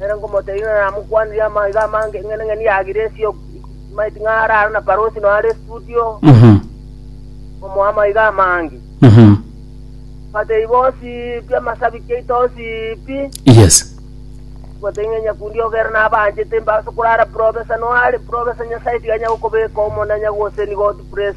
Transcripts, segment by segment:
Ere nkomotebirie ng'a namokwanire amaiga amange ing'ening'eni ya Giresi ok maeti ng'a are aro na Parosi noo are studio, Mhm. omoa amaiga amange. Mhm. Batei bonsi pi amasabiki aito onsi pi, Yes. gotei ng'a nyakundi ogere nabanchete mbase korara profesa noo are profesa Nyasae tiga anyagokobeka omonanya gose nigo otu pres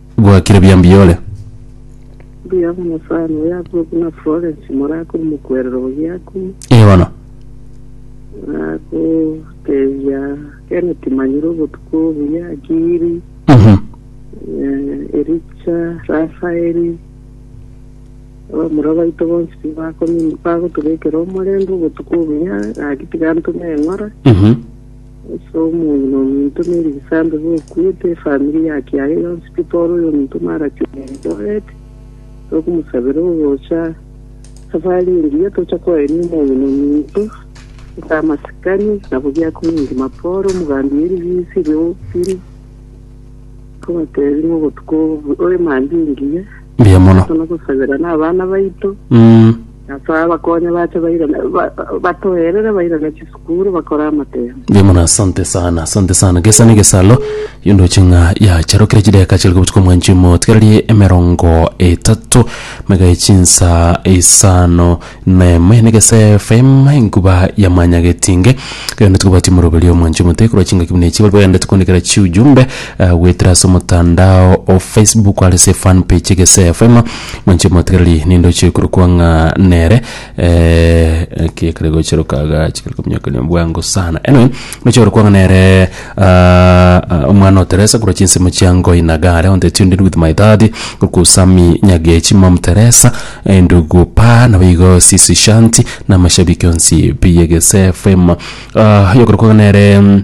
Gwakire buya mbiore. Mbuya mono sana oyo abwo buna Florence morakuru mokwerero ogiaku. Ee bono. Nagotebia Kenneth manyire obotuko obuya Giri. Mhm. Eh, Ericha, Rafaeli. Abamura baito bonsi pi bakomi- bagotobekera omorembe obotuko obuya, gaki tiga ntume eng'ora. Mhm. Ase omoyio nominto ne rigisaambe bokuete efamiri yake yaye yonsi pi Paul oyominto Maraki o Eldoret tokomosabera ogocha safari engiya tocha koenia omoyio nominto ase amasikani nabo giakumia engima Paul omogambi ye ribisi rio Philly kobatebia obotuko obo oemambia engiya Mbuya mono. tono gosabera nabana baito Mm. Nasae abakonye bache bairane, batoerere bairane chisukuru bakore amatemo. Mbuya mono asante sana asante sana gesa ne gesalo yo ndoche ng'a yacharokire chideka chiri kobutuka mwanchi omo tigererie emerongo etato mega echinsa isano nemo ene gese fm enkuba ya manyagetinge kero nitikobatia moroberio mwanchi omote korwa chingaki buna echi bari bagendete kondikera chiujumbe eh, goetera ase omotandao o facebook are se fan page gese fm Mwanche mwatigereri nindoche korokwa ng'a nere eki ekere gocha rokaga chikere kominyokanio bwango sana anyway ndoche korokwa ng'a nere ah, ah, omwana o teresa korwa chinsemo chia ngoi na gare on the tuned with my daddy korokwa usami nyagechi mom teresa eh, ndugu pa nabo igo sisi shanti na amashabiki onsi pi egese fm Ah, yokorokwa ng'a nere mm,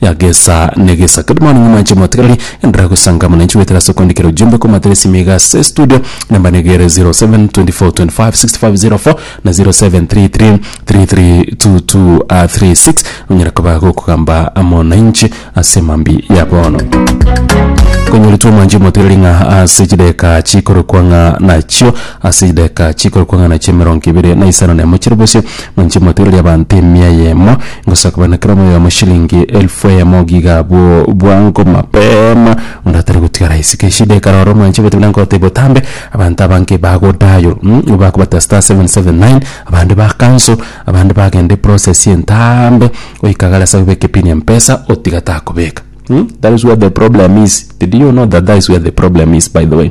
ya gesa ne gesa. Good morning mwanche motigarari endera gusanga mwananchi wetera ase kwandikera ujumbe kwa matera esimi iga ase studio namba negere 0724256504 na 0733332236 onyara koba gokogamba mwananchi ase mambi ya bono konyoritwe omwanchi motigarari ng'a ase chideka chikorokwa ng'a nachio ase chideka chikorokwa ng'a nachio emerongo ebere na isano na emo chire bosio Nainche motwe riria abanto emia eyemo ngosaga buna kera omoyomo shilingi elfu eyemo giga abwo bwango mapema onde atari gotigara isiko eshida ekara oro mwanche gote buna ngote botambe abanto aba nki bago dial nigo bakobata star seven seven nine abande ba cancel abande bagenda eprocess entaambe goika gare ase gobeka epini ya mpesa otiga takobeka that is where the problem is did you know that that is where the problem is by the way.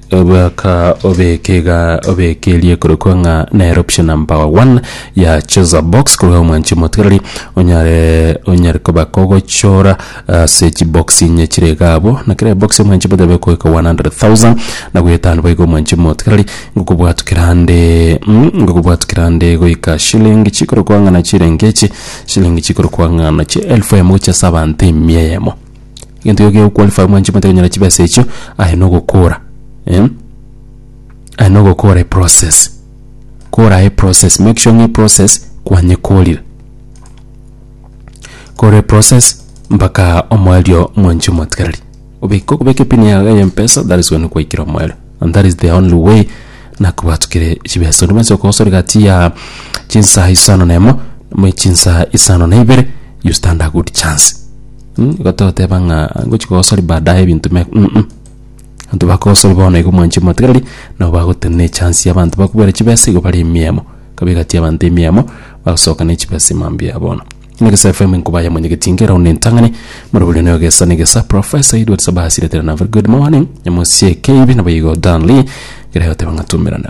Ogoaka obeke iga obeke eria ekorokwa ng'a nere option number one ya chooser box korwa omwanchi omotigareri onyare onyare koba kogochora ase chibox inye chire iga abwo na kera ebox omwanchi omotigareri egokoeka one hundred thousand na goetano boigo omwanchi omotigareri ngokobwatwa kerande ngokobwatwa kerande goika shilling chikorokwa ng'a na chirenge echi shilling chikorokwa ng'a nachi elfu eyemo gochia ase abanto emia eyemo. egento ekio kego qualify mwanche omanyete konyora chibesa echio, aye na ogokora eh, aye na ogokora eprocess, kora eprocess make sure ng'a eprocess kwanyekorire. Kora eprocess mpaka omoerio mwanchi omotigereri obeke okobeka epini yago ya mpesa that is when kwaikire omoerio and that is the only way nakobatokire chibesa onde bwensi okogosora egati ya chinsa isano na emo, ama chinsa isano na ibere you stand a good chance. Mm, gototeba ng'a ngochi kogosori baadaye ebinto me mm mm. Abanto bakogosori bono igo mwanchi motigereri nabo bagotenena na echance ya abanto bakobere chibesa igo bare emiemo kabe egati abanto emiemo bagosoka na echibesa mambia bono. Egesae FM nkoba ya mwenyegeti ngera one entang'ani more bore noyo gesa na egesa professor Edward Sabasi retera na very good morning nyamosie KB nabo igo Dan Lee ngera yoteba ng'a tumerane.